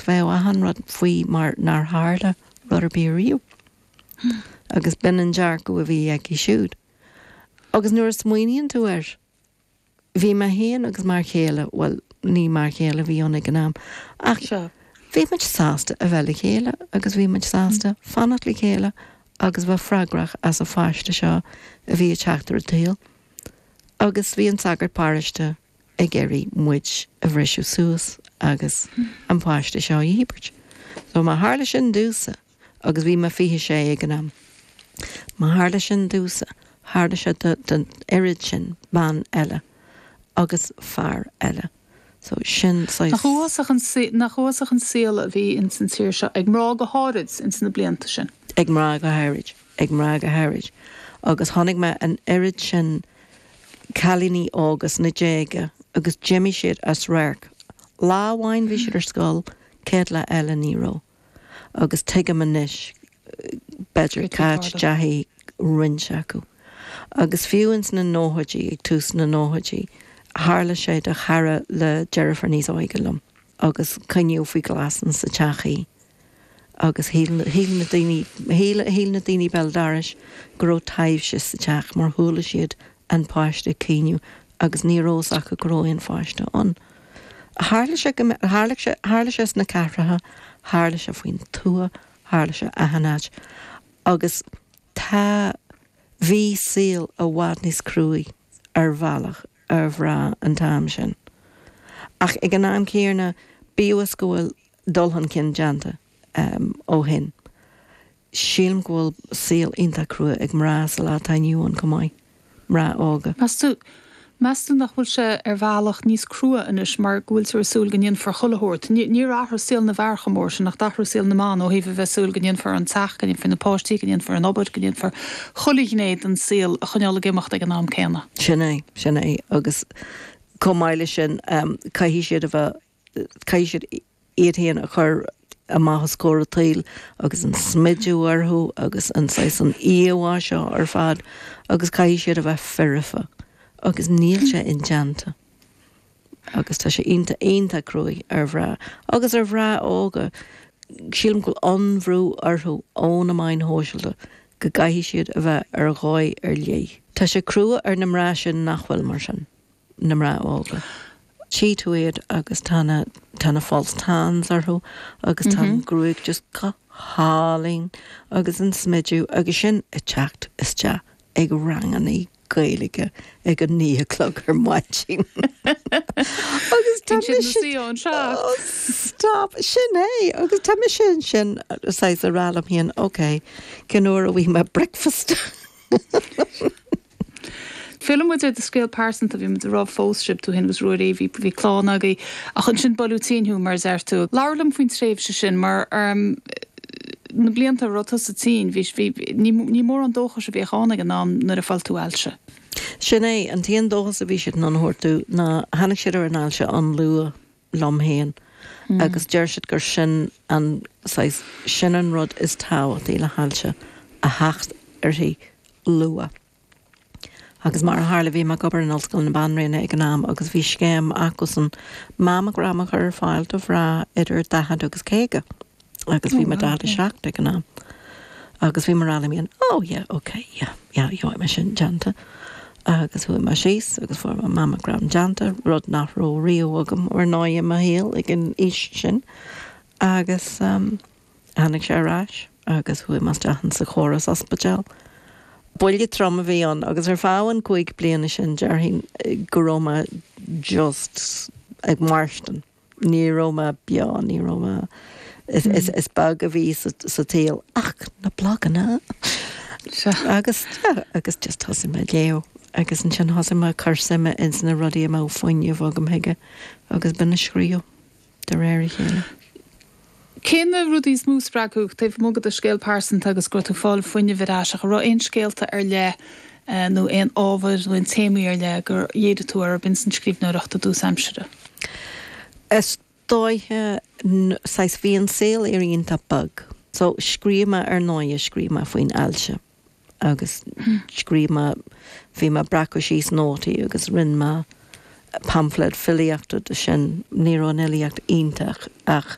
Bheadh achan rud faoi mar nár tharla rud ar bith ariamh. Agus b'in an dearcadh a bhí aici siúd. Agus nuair a smaoiníonn tú air, bhí mé féin agus m'fhear chéile, bhuel, ní m'fhear chéile a bhí ann ag an am, ach bhí muid sásta a bheith le chéile agus bhí muid sásta fanacht le chéile agus bheith freagrach as an pháiste seo a bhí ag teacht ar an tsaol. Agus bhí an sagart páráiste ag iarraidh muid a bhriseadh suas agus an páiste seo a dhíbirt. So má tharla sin domhsa agus bhí mé 26 ag an am, má tharla sin domhsa, tharla sé don oiread sin ban eile agus fear eile. So sin saghas. Nach uafásach an saol a bhí ins an tír seo, ag mná go háirid, ins na blianta sin. Ag mná go háirid. ag mná go háirid, agus chonaic mé an oiread sin cailíní óga sna déaga agus d'imigh siad as radharc. Lá amháin bhí siad ar scoil, céad lá eile ní raibh. Agus tuigim anois, b'fhéidir, cá ndeachaidh roinnt acu. Agus fiú ins na nóchaidí, ag tús na nóchaidí, tharla sé do chara le deirfiúr níos óige liom agus coinníodh faoi ghlas insa teach í. agus shíl na daoine, shíl na daoine béal dorais go raibh taidhbhse sa teach mar chuala siad an páiste ag caoineadh agus ní raibh a fhios acu go raibh an páiste ann. Tharla sé go mbeadh, tharla sé, tharla sé sna cathracha, tharla sé faoin tuath, tharla sé achan áit agus tá, bhí saol i bhfad níos cruaidhe ar bhealach ar mhná an t-am sin ach ag an am céanna bíodh is go bhfuil, dul chun cinn déanta ó shin. Sílim go bhfuil saol iontach crua ag mná sa lá atá inniu ann chomh maith, mná óga. Meas tú, meas tú nach bhfuil sé ar bhealach níos crua anois mar go bhfuiltear ag súil go ndéanfar chuile shórt, níor athraigh saol na bhfear chomh mór sin ach d'athraigh saol na mban ó thaobh a bheith ag súil go ndéanfar an teach, go ndéanfar na páistí, go ndéanfar an obair, go ndéanfar chuile ghné den saol a choinneáil ag imeacht ag an am céanna. Sin é, sin é agus chomh maith leis sin caithfidh siad a bheith. Caithfidh siad iad féin a chur amach os comhair an tsaoil agus an smideadh orthu agus an saghas an íomhá seo ar fad agus caithfidh siad a bheith foirfe agus níl sé indéanta agus tá sé iontach, iontach cruaidh ar mhná agus ar mhná óga. Sílim go bhfuil an-bhrú orthu ó na meáin shóisialta go gcaithfidh siad a bheith ar dhóigh ar leith. Tá sé crua ar na mná sin nach bhfuil mar sin. na mná óga. Tchí tú iad agus tá na, tá na false tans orthu agus tá an gruaig just go hálainn agus an smidiú agus sin ag teacht isteach ag rangannaí Gaeilge ag a naoi a chlog ar maidin. Agus tá mise ansin anseo. Stop, sin é agus tá mise ansin saghas ag rá liom féin, ok, cén uair a bhfaighidh mé breakfast? Fillfidh muid ar do scéal pearsanta, bhí muid ag rá phós sibh, tú fhéin agus Ruairí, bhí bhí clann agaibh ach ansin buaileadh tinn thú mar a deir tú. Labhair liom faoin tréimhse sin mar na blianta a raibh tusa tinn, bhí, bhí, ní, ní mórán dóchais a bhíodh ann ag an am nuair a tholg tú ailse. Sin é, an t-aon dóchas a bhí siad in ann a thabhairt domh ná tháinig siad ar an ailse an-luath. liom féin agus deir siad gur sin an saghas, sin an rud is tábhachtaí le hailse, a theacht uirthi luath. Agus mar a tharla bhí mé ag obair in Ollscoil na Banríona ag an am agus bhí scéim acusan mammogram a chur ar fáil do mhná idir 40 agus 50. Agus bhí mé 47 ag an am. Agus bhí mé ag rá liom féin, oh yeah, ok, yeah, yeah, gheobhaidh mé sin déanta. Agus chuaigh mé síos agus fuair mé mammogram déanta, rud nach raibh riamh agam ar ndóigh i mo shaol ag an aois sin. Agus tháinig sé ar ais agus chuaigh mé isteach ins an chóras ospidéil. Buille trom a bhí ann agus ar feadh na gcúig bliana sin déarfainn go raibh mé just ag mairstean. Ní raibh mé beo, ní raibh mé, is beag a bhí sa tsaol ach na blaganna agus agus just thosaigh mé ag léamh agus ansin thosaigh mé ag cur suime ins na rudaí a mbeadh fuinneamh agam chuige agus b'in an scríobh de réir a chéile. Cé na rudaí is mó a spreag thú, taobh amuigh de do scéal pearsanta agus go raibh tú ag fáil fuinnimh ar ais, ach an raibh aon scéalta ar leith nó aon ábhair nó aon téamaí ar leith gur dhírigh tú orthu ins an scríbhneoireacht i dtús aimsire? Is dóiche, saghas, bhí an saol iontach beag so scríobh mé ar ndóighe, scríobh mé faoin ailse agus scríobh mé, bhí mé ag breacadh síos nótaí agus rinne mé pamphlet filíochta de sin, ní raibh an fhilíocht iontach ach.